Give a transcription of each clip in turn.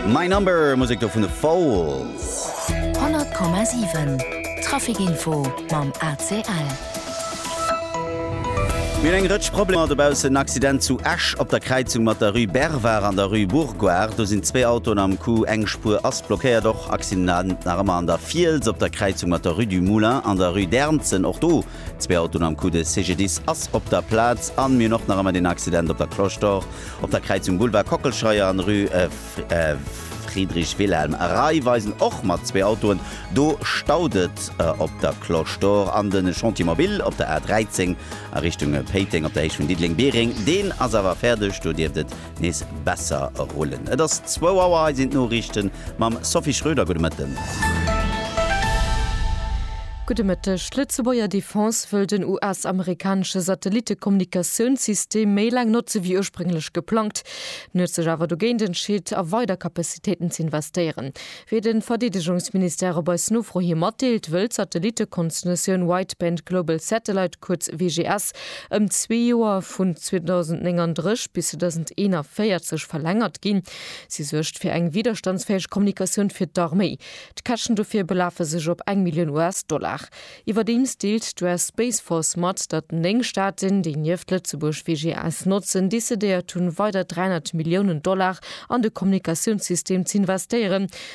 My Number, Musek do vun The Falls. 100,7 Trafikinfo mam ACL. Mir hunn eng Rëtsch Problemer dobaussen. En Accident zu Esch op der Kräizung mat der Rue Bervard an der Rue Bourgoire. Do sinn zwee Autoen am Coup, eng Spuer ass blockéiert. Och Accident nach ëmmer an der Fiels op der Kräizung mat der Rue du Moulin an der Rue d'Ernzen. Och do Zwee Autoen am Coup de CGDIS ass op der Plaz. An mir hunn och nach ëmmer deen Accident op der Cloche d'Or, op der Kräizung Boulevard Kockelscheuer an Rue Friedrich Wilhelm. Rei weisen och mat zwee Autoen. Do staut et op der Cloche d'Or. An de Chantier Mobil op der A 13 a Richtung Péiteng op der Héicht vun Diddeleng-Biereng, deen ass awer fäerdeg. Do dierft et nees besser rullen. Et ass zwou Auer, hei sinn d'Noriichten mam Sophie Schröder. Gudde Mëtten. Gudde Mëtteg. D'Lëtzebuerger Defense wëll den US-amerikanesche Satellittekommunikatiounssystem méi laang notze wéi ursprénglech geplangt. En huet sech awer dogéint entscheet, a weider Capacitéiten ze investéieren. Wéi de Verdeedegungsministère op eis Nofro hi matdeelt, wëll d'Satellittekonstellatioun Wideband Global Satellite, kuerz WGS, ëm zwee Joer, vun 2039 bis 2041, verlängert ginn. Si suergt fir eng widderstandsfäeg Kommunikatioun fir d'Arméi. D'Käschten dofir belafe sech op eng Millioun US-Dollar. Iwwerdeems deelt d'US Space Force mat, datt néng Staaten, déi nieft Lëtzebuerg WGS notzen, decidéiert hunn, weider 300 Milliounen Dollar an de Kommunikatiounssystem z'investéieren,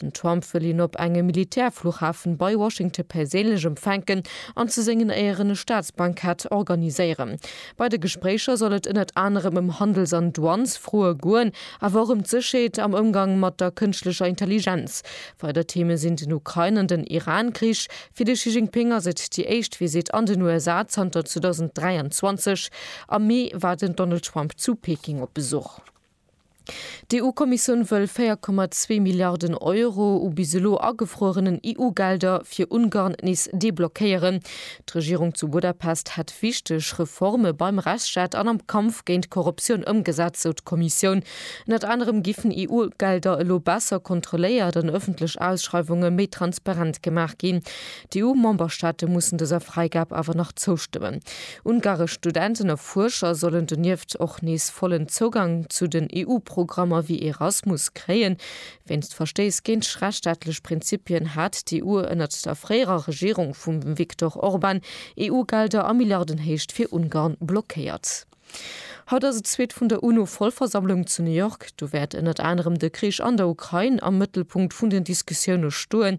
Den Trump wëll hien op engem Militärfluchhafen bei Washington perséinlech empfänken an zu sengen Éieren e Staatsbankett organiséieren. Bei de Gespréicher soll et ënnert anerem ëm Handels an Douanesfroe goen, awer och ëm d'Sécherheet am Ëmgang mat der kënschtlecher Intelligenz. Weider Theeme sinn den Ukrain an den Iran-Krich. Fir de Xi Jinping ass et déi éischt Visitt an den USA zanter 2023. Am Mee war den Donald Trump zu Peking op Besuch. D'EU-Kommissioun wëll 4,2 Milliarden Euro u bis elo agefruerenen EU-Gelder fir Ungarn nees deblockéieren. D'Regierung zu Budapest hätt wichteg Reforme beim Rechtsstaat an am Kampf géint d'Korruptioun ëmgesat, sou d'Kommissioun. Ënnert anerem giffen EU-Gelder elo besser kontrolléiert an ëffentlech Ausschreiwunge méi transparent gemaach ginn. D'EU-Memberstaate mussen dëser Fräigab awer nach zoustëmmen. Ungaresch Studenten a Fuerscher sollen donieft och nees vollen Zougang zu den EU-Programmer wéi Erasmus kréien. Wéinst Verstéiss géint rechtsstaatlech Prinzipien hat d'EU ënnert der fréierer Regierung vum Viktor Orban EU-Gelder a Milliardenhéicht fir Ungarn blockéiert. Haut ass et zweet vun der UNO-Vollversammlung zu New York. Do wäert ënnert anerem de Krich an der Ukrain am Mëttelpunkt vun den Diskussioune stoen.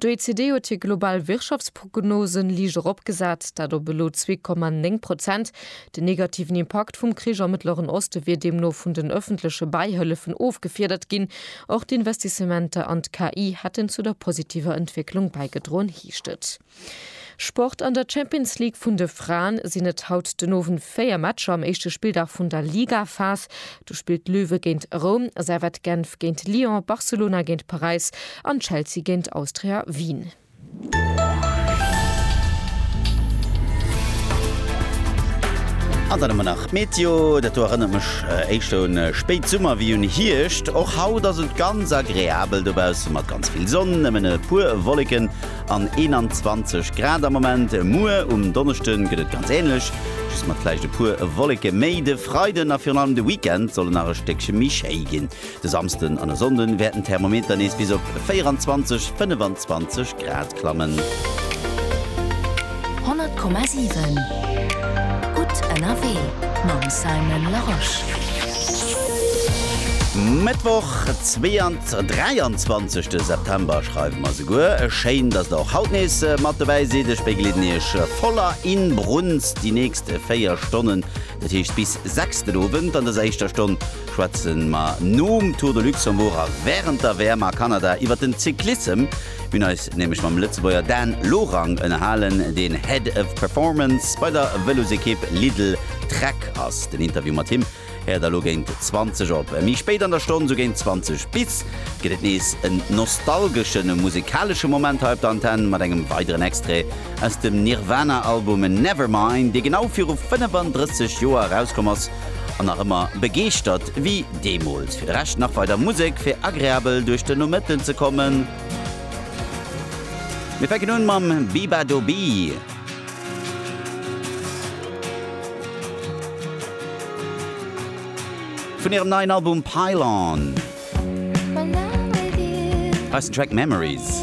D'OECD huet hir global Wirtschaftsprognosen liicht eropgesat, dat op elo 2,9 Prozent. Den negativen Impakt vum Krich am Mëttleren Oste wier deemno vun den ëffentleche Bäihëllefen ofgefiedert ginn. Och d'Investissementer an d'KI hätten zu der positiver Entwécklung bäigedroen, heescht et. Sport, An der Champions League vun de Fraen sinn et haut den Owend 4 Matcher am éischte Spilldag vun der Ligaphas. Do spillt Löwe géint Roum, Servette Genf géint Lyon, Barcelona géint Paräis an Chelsea géint Austria Wien. An dann ëmmer nach d'Meteo, dat do erënnert mech éischter un Spéitsummer wéi un Hierscht. Och haut ass et ganz agreabel dobaussen, mat ganz vill Sonn, nëmmen e puer Wolleken an 21 Grad am Moment. Muer um Donneschde gëtt et ganz änlech, just mat vläicht e puer Wolleke méi. De Freiden a virun allem de Weekend solle nach e Stéckche méi schéi ginn. De Samsden an e Sonnden wäerten d'Thermometer nees bis op 24, 25 Grad klammen. 100,7 gutt ënnerwee mam Simon Larosche. Mëttwoch, 22. Ze 23 de September schreiwe mer souguer. Schéin, dass der och haut nees mat dobäi sidd. Ech begleeden iech voller Inbrunst déi nächst 4 Stonnen, dat heescht bis 6 den Owend. An dëser éischter Stonn schwätze mer nom Tour de Luxembourg a wärend der WM a Kanada iwwert den Cyclissem. Mir hunn eis nämlech mam Lëtzebuerger Dan Lorang ënnerhalen, deen Head of Performance bei der Vëlosekipp Lidl Trek ass. Den Interview mat him Héiert der elo géint 20 op. Méi spéit an der Stonn, sou géint 20 bis, gëtt et nees en nostalgeschen a musikalesche Moment hei op der Antenn mat engem weideren Extrait aus dem Nirvana-Album Nevermind, dee genau viru 35 Joer erauskomm ass an nach ëmmer begeeschtert wéi deemools. Fir de Rescht nach weider Musek fir agreabel duerch den Nomëtten ze kommen. Mir fänken un mam Bebadoobee. Vun hirem neien Album Pile On ass den Track Memories.